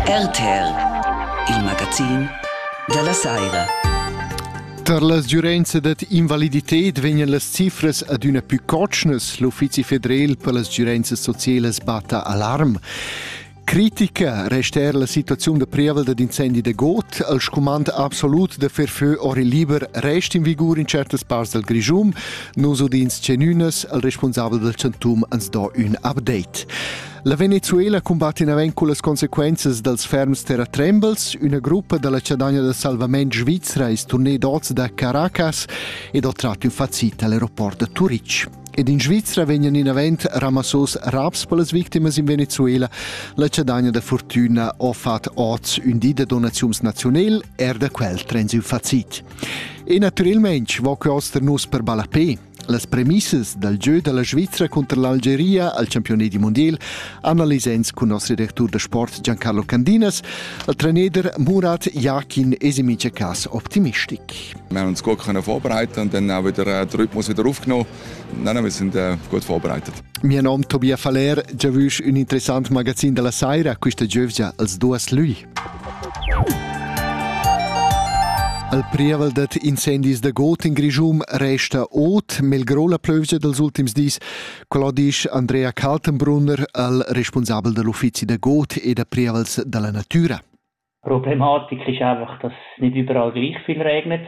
RTL, il magazin dalla saira. Tar las giurenza dad invaliditet vegnan las cifras adüna più cotschnas. L'Uffizi federal per las giurenzas socielas batta alarm. Critica resta er la situaziun da prievel dad incendi da got. Il scumand absolut da fer fö ori liber rest in vigur in certas parts dal Grischum. Nus udins cenünas, il responsabel dal Chantum ans do ün update. La Venezuela cumbatta naven cullas consequenzas dals ferms terratrembels. Üna gruppa dalla Chadagna del Salvament svizra es turnée d'oz da Caracas ed ho tratto infazita all'aeroport da Turitg. Ed in Svizra vegnan inavent ramassos raps per las victimas in Venezuela. La Chadagna da Fortuna ha fat oz un di da donaziums nazional, er da quel trens in facit. E naturalmente va quest nus per ballapé. Las premissas dal gieu da la Svizra cunter l'Algeria al campioni di mondial analisa ins cun noss redactur da sport Giancarlo Candinas, al trainer Murat Jakin es in mincha cas optimistic. Wir haben uns gut können vorbereiten und dann auch wieder den Rhythmus wieder aufgenommen. Nein, wir sind äh, gut vorbereitet. Mio nom Tobias Faller, già vus un interessant magazin della Saira, questa giovgia als duas lui. Al prievel dad incendis da got in Grischun resta ot melgrò la plövgia dals ultims dis. Quella disch Andrea Kaltenbrunner, al responsabel da l'uffizi da got e da prievels da la natura. Die Problematik ist einfach, dass nicht überall gleich viel regnet.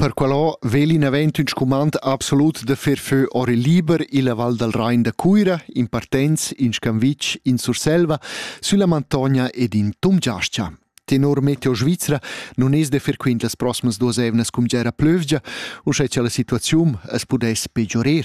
Per quello vegli navent ün scumand absolut da fer fö ora liber illa Val dal Rain da Cuira, in partenz, in Scamvitsch, in Surselva, sülla Mantogna ed in Tumgiascha. Tenor Meteo Svizra non es da fer quint las proximas duas eivnas cum gera plövgia, uschè cha la situaziun as pudess peggiorer.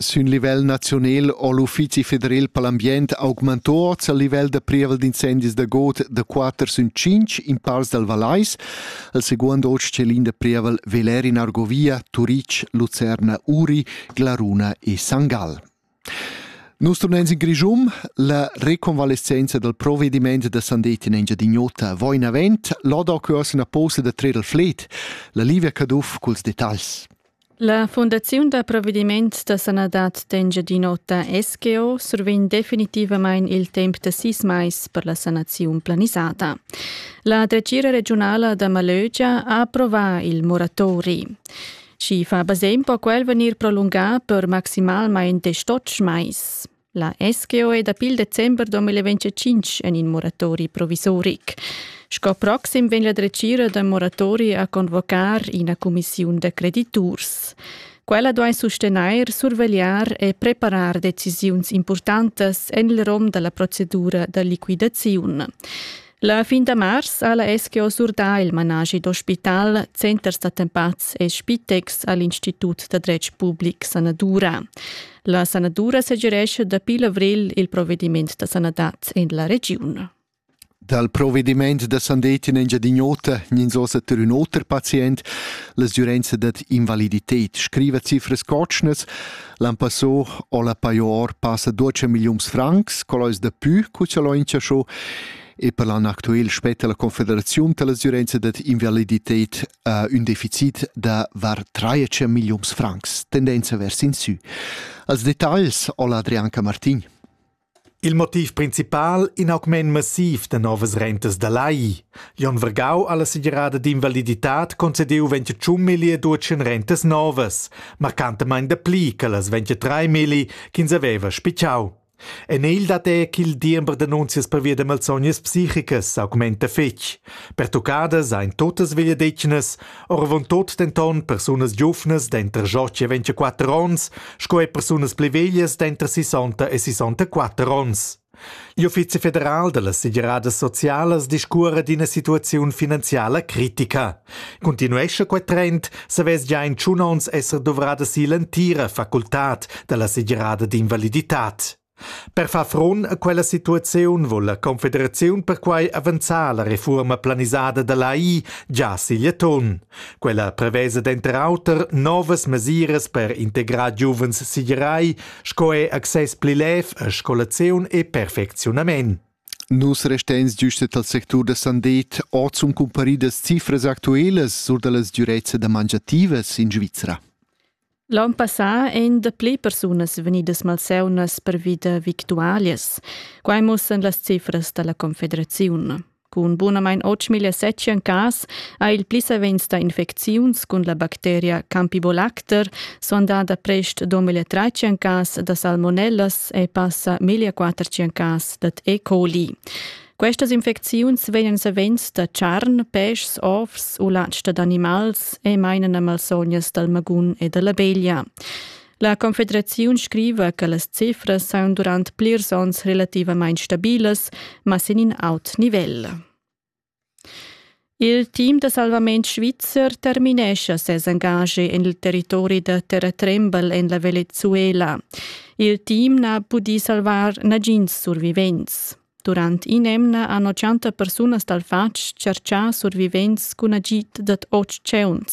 Sün livel naziunel ho l'Uffizi federal per l'ambient augmantò ord il livel da prievel d'incendis da god da quatter sün tschinch in parts dal Vallais. Il seguond hoz tschelin da prievel veler in Argovia, Turic, Lucerna, Uri, Glaruna e Sangal. Nus turnens in Grischum, la reconvalescenza dal provvediment da Sandetti in Engiadin'Ota va in avant, l'Oda cuors ina posa da trer il fled, la Livia Caduff culs detagls. La Fundaziun da provvediments da sanadad d'Engiadin'Ota SGO survegn definitivamain il temp da sis mais per la sanaziun planisada. La dretgira regiunala da Malögia ha approvà il moratori. Schi fa basegn po quel vegnir prolungà per maximalmain desch mais. La SGO è dapi il december 2025 en in moratori provisoric. Sco proxim vegn la dretgira da moratori a convocar ina cumissiun da crediturs. Quella duai sustenair, survegliar e preparar decisiuns importantas en il rom della procedura da liquidaziun. La fin da mars ha la SGO surdà il manaschi d'ospital Centers d'attempats e Spitex a l'Institut da dretg public Sanadura. La sanadura segirescha dapi l'avril il provediment da sanadad en la regiun. Dal provvediment da sandettin Engiadin'Ota gnins ossa ter ün oter pazient. La sgürenza dad invalidited scriva cifras cotschnas. L'an passò ho la Paior passa duocha milliuns francs, cò l'ais dapü cu cha l'ho inchaschò e per l'an actuel spetta la Confederaziun dall'asüranza dad invalidited uh, ün deficit da var 13 milliuns francs, tendenza vers in sü. Als detagls ho l'Adrian Camartin. Il motiv principal in augment massiv da novas rentas da lai. Jon Vergau alla segerada d'invaliditad concedeu 21 milli e 12 rentas novas, marcantamain dapli che las 23 milli ch'ins aveva spicciau. En il dat è ch'il diember d'annunzias pervia da malsognas psichicas augmenta fetg. Pertuccadas ein totas vegliadetgnas, Oravontut denton persunas giuvnas denter Joci e 24 onns sco e persunas pli veglias denter 60 e 64 onns. L'Uffizi federal da las segiradas socialas discuora d'ina situaziun finanziala critica. Continuescha quel trend savess già in tschun onns esser duvrada si l'entira facultad da la segirada d'invaliditat. Per far front a quella situaziun vul la Confederaziun perquai avanzar la refuorma planisada da l'AI già sigl atun. Quella prevesa denter auter novas mesiras per integrar giuvens sigerai sco er access pli lev a scolaziun e perfecziunament. Nus resteins giustet al sectur da sandet ord sun cumparidas cifras actuelas sur da las dürezza da mangiativas in Svizra. L'on passà ein dapli persunas vegnidas malseunas pervi da victualias. Quai mussan las cifras dalla Confederaziun. Cun bunamain 8.700 cas ha il pli savens da infecziuns cun la bacteria Campibolacter sondada prest 2.300 cas da salmonellas e passa 1.400 cas dad E. coli. Questas infecziuns vegnan savens da charn, peschs, ovs u latg dad animals e mainan a malsognas dal magun e da la beglia. La Confederaziun scriva che las cifras saun durant plirs onns relativamain stabilas, ma sin in aut nivel. Il team da salvament svizzer terminescha ses engaschi en il territori da terratrembel en la Venezuela. Il team n'ha pudì salvar nagins survivents. Durant in'emna hanno 100 persunas dal fatg tscherchà survivents cun agid dad otg cheuns.